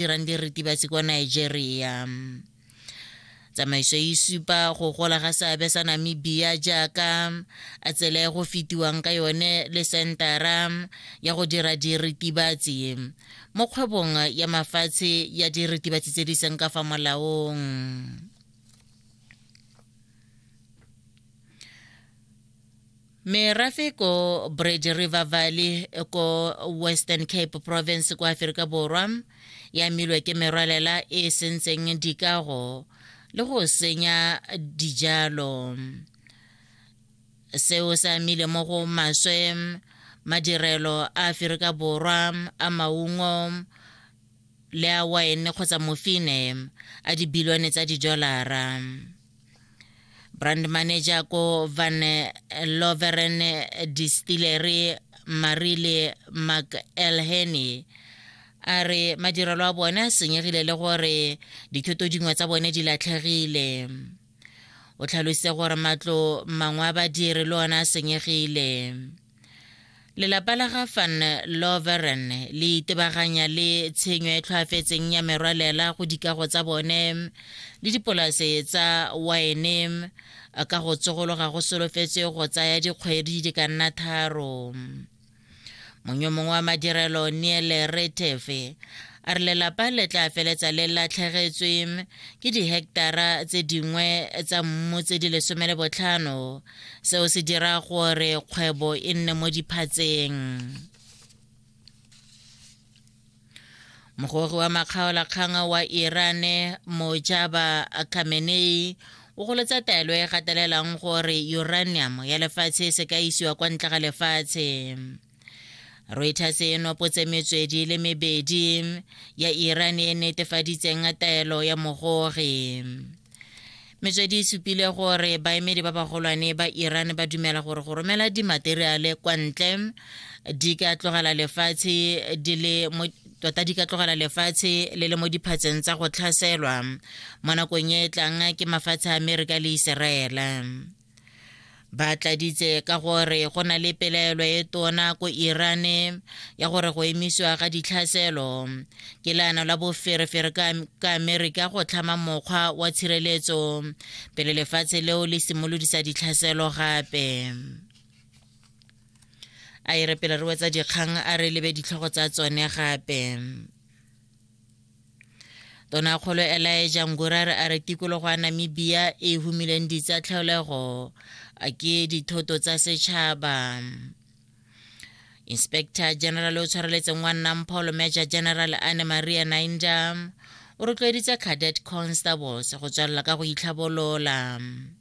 dirang diritibatsi kwa nigeria tsamaiso e supa go gola ga seabe sa namibia jaaka a tsela e go fetiwang ka yone le sentara ya go dira diritibatsi mo kgwebong ya mafatshe ya diritibatsi tse di seng ka fa molaong merafe ko bridge river valley ko western cape province kwa aferika borwa ya milwe ke merwalela e e sentseng dikago le go senya dijalo seo se amile mo go maswe madirelo a aferika borwa a maungo le a wine kgotsa mofine a dibilione tsa didolara brand manager ko van loveren distillery marile mcelheny a re madirelo a bone a senyegile le gore dithoto dingwe tsa bone di latlhegile o tlhalositse gore matlo mangwe a badiri le one a senyegile lelapa la ga van loveren le itebaganya le tshenyo e tlhoafetseng ya merwalela go dikago tsa bone le dipolase tsa wine ka go tsogologa go solofetse go tsaya dikgwedi di ka nna tharo monyo mongwe wa madirelo neele retefe a re lelapa le tla feletsa le latlhegetswe ke diheketara tse dingwe tsa mmu tse di lesome le botlhano seo se dira gore kgwebo e nne mo diphatseng mogogi wa makgaolakgang wa iran mojaba khamenei o golotsa taelo e gatelelang gore uranium ya lefatshe se ka isiwa kwa ntle ga lefatshe reuters e nopotse metswedi le mebedi ya iran e netefaditseng taelo ya mogori metswedi e supile gore baemedi ba bagolwane ba iran ba dumela gore go romela dimateriale kwa ntle di ka tlogela lefatshe di le mo tota di ka tlogela lefatshe le le mo diphatseng tsa go tlhaselwa mo nakong e e tlang ke mafatshe a amerika le iseraele ba tladitse ka gore go na le pelaelo e tona ko irane ya gore go emisiwa ga ditlhaselo ke leano la boferefere ka amerika go tlhama mokgwa wa tshireletso pele lefatshe leo le simolodisa ditlhaselo gape a e re pele re wetsa dikgang a re lebe ditlhogo tsa tsone gape Tonakgolo Elijah Ngurare a re tikologo ya Namibia e humileng ditsa tlhaolego a ke dithoto tsa setšhaba. Inspector General o tshwareletseng wa nnang Paul Major General Anne Maria Nainda o rotloeditse Cadet Constables go tswelela ka go itlhabolola.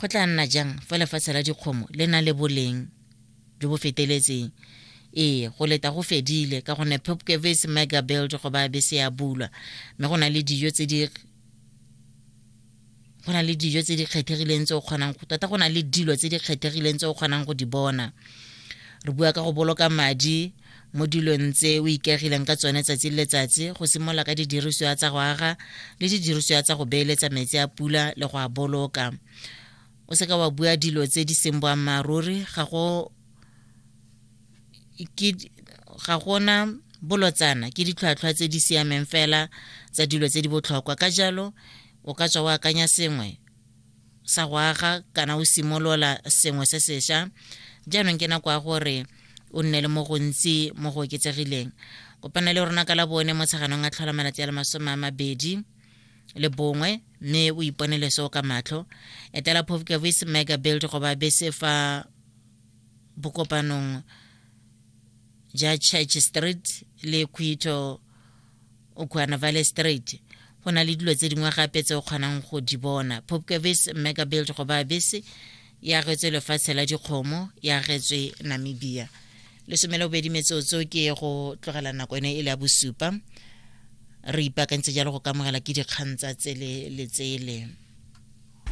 Go tla nna jang fa lefatshe la dikgomo le na le boleng jo bo feteletseng? Ee, go leta go fedile ka gonne Pupkewitz Mega Build go ba bese ya bulwa mme go na le dijo tse di go na le dijo tse di kgethegileng tse o kgonang tota go na le dilo tse di kgethegileng tse o kgonang go di bona re bua ka go boloka madi mo dilong tse o ikegileng ka tsone tsatsi le letsatsi go simolola ka didirisiwa tsa go aga le didirisiwa tsa go beeletsa metsi a pula le go a boloka o seka wa bua dilo tse di seng boammaaruri ga go ke ga gona bolotsana ke ditlhwatlhwa tse di siameng fela tsa dilo tse di botlhokwa ka jalo o ka tswa o akanya sengwe sa go aga kana o simolola sengwe se sesha jaanong ke nako ya gore o nne le mo gontsi mo go oketsegileng kopana le rona ka la bone mo tsheganong a tlhola malatsi a le masome a mabedi le bongwe mme o iponele seo ka matlho etela pofkavis mega build goba bese fa bokopanong ja church street le quito o khuana vale straight go na le dilo tse dingwe gape tse o kgonang go di bona popcavis megabuild go ba bese e agetswe lefatshe la dikgomo e agetswe namibia lesome le bobedi metsotso ke go tlogela nako ene e le ya bosupa re ipaakantse jalo go kamogela ke dikgang tsa tsele le tsele